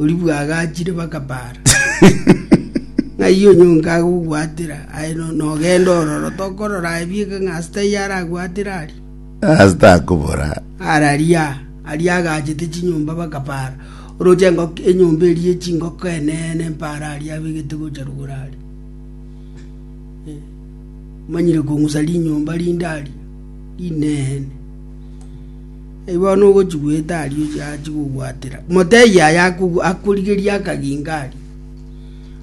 oria bwagachire bakabaara. Ng'ai onyonka agogwatera aye no- nogenda ororo tokorora ebieka ng'a ase taiyo aragwatera aria Ase takobora. araria aria agachete chinyomba bakabaara oroche engoko enyomba eria ye chingoko eneene mpaara aria abegete gocha rogoro aria Eh, omanyire kong'usa rinyomba rinde aria rineene Aye bono ogochigwete aria oche ache gogwatera, motebie aye akogu- akorigerie akaginga aria,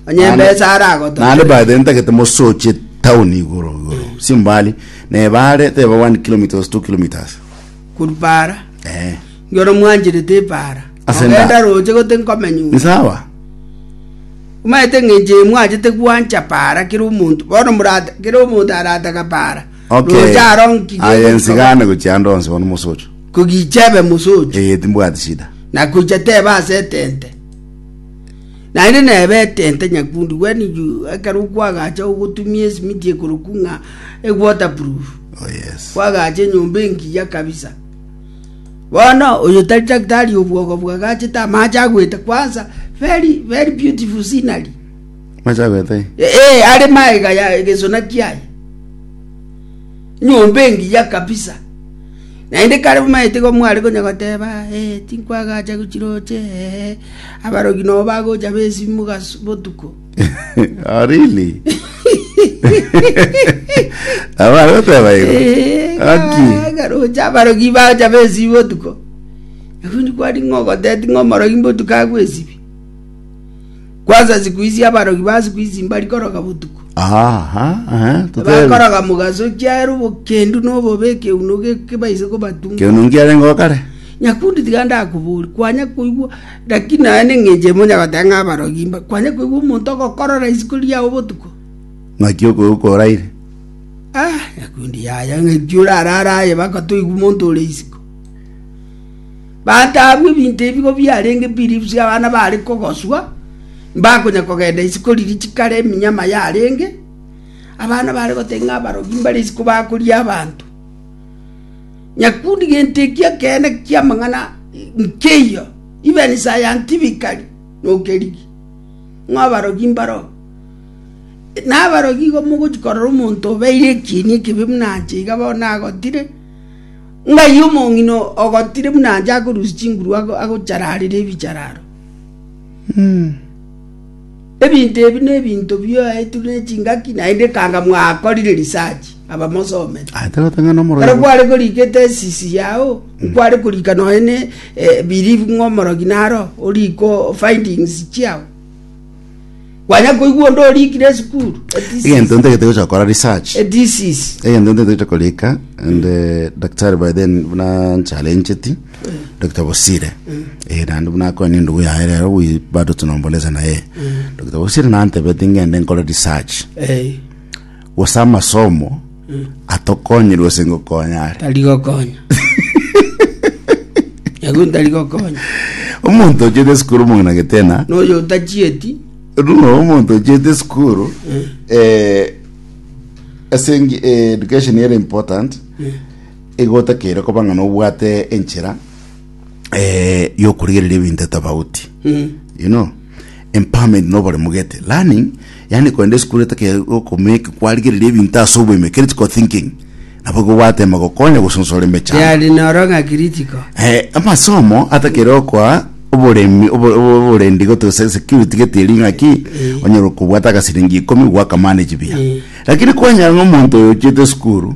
onye embesa Naende aragotongere. by the way ntagete mosoche town igoro igoro simbali nebare teba 1 kilometres 2 kilometres Korwa para, eh ngero mwancherete epara, Ase nda- ogenda roche gote nkomenya ung'e. nisawa Omanyete ng'a enchera mwanchete gwancha para kera omonto, bono morata kera omonto arataga para. Okay. Roche aro nki aye gegochika nsigane gochia ande onsi bono mosocho kogicha ebe mosocho eye timbwati shida na koicha tebe ase etente naende nebe etente nyakundi when you ekero kwagacha ogotumia esimiti ekoroku ng'a ewaterproof oh yes kwagacha enyomba engiya kabisa bono oyo tari daktari obwogo bwagachete amache agwete kwanza very very beautiful scenery Mache agwete aye. Ee, are maega ya egesona kiaye, nyomba engiya kabisa. Naende kare bomaete igo mware konya goteba, ee, tinkwagacha gochiroche, ee, abarogi nobo bagocha b'esimi mogas- botuko. Ah, really? Abare goteba igo. Ee, Aki. ga- garocha abarogi bagocha b'esimi botuko. Nakundi kwari ng'ogoteti ng'omorogi mbotuko agwe esimi. Kwansa siku ici abarogi ba siku ici mbarikoroga botuko. Aha, aha, totebe. Bakoroga mogaso chiaero bokendu na obobe ekeuno gekebaise kobatunga. Keuno nkiarenge o kare. Nyakundi tiga ndakobori kwanya koigwa lakini naye neng'enche emo nyagoteba ng'a abarogi mba kwanya koigwa omonto ogokorora isiko riao botuko. Ng'aki okoigwa koraire. Ah, nyakundi yaya ng'aki orarara aye bakotoigwa omonto ore isiko. Bataabwe ebinto ebi nigo biarenge biribusu abana baare kogoswa, mbakonya kogenda isiko riria chikare eminyama yarenge, abana baare gotebi ng'a abarogi mbare isiko bakoria abanto. Nyakundi gento ekio ekeene ki'amang'ana nkeiyo, even scientifically nokerigi, ng'a abarogi mbaro. Na abarogi igo mogochi korora omonto obeire ekieni ekebe buna inche iga bono nagotire. Ng'ai omong'ina ogotire buna anche akorusia chinguru agochararera ebichararo? Ebinto ebi nebinto biaetwe nechingaki, naende ekanga mwakorire research abamosomete. Ah, tagota ng'a nomoro Ekero kware korika ethesis yao, nkware korika nonya ne eh, believe ng'a omorogi naro oriko findings chiao. Kwanya koigwa onde orikire esukuru. A disease. egento ntagete gocha gokora research A disease. egento ntagete korika and eh, daktari by then buna nchalencheti dr bosire eh, naende buna akoe nendugu yaye rero wi- bado tunombolesa naye dr bosire nantebeti ngende nkore research Eh. gose amasomo atokonyire gose ngokonya are. tari gokonya egwe ntari gokonya Omonto ochete esukuru omong'ina getena, noyo otachieti runo omonto ochete esukuru eh, ase engi- eh, education ere important egotakeire koba ng'a nobwate enchera eh, yokorigereria ebinto tofauti Mm. you know Empowerment na oboremu gete, learning, yaani kogenda esukuru etekokomake kwarigereria ebinto ase oboime, critical thinking, nabo igo gwatema gokonya gosonsora emechando. Yari noro ng'a critical. Eh, amasomo atakere okoa oboremi obo- obo- oborendi goto se- security getiri ng'aki Eh. onyora okobwata agasiringi ikomi gwakamanage buya Eh. lakini kwanyara ng'a omonto oyo ochiete esukuru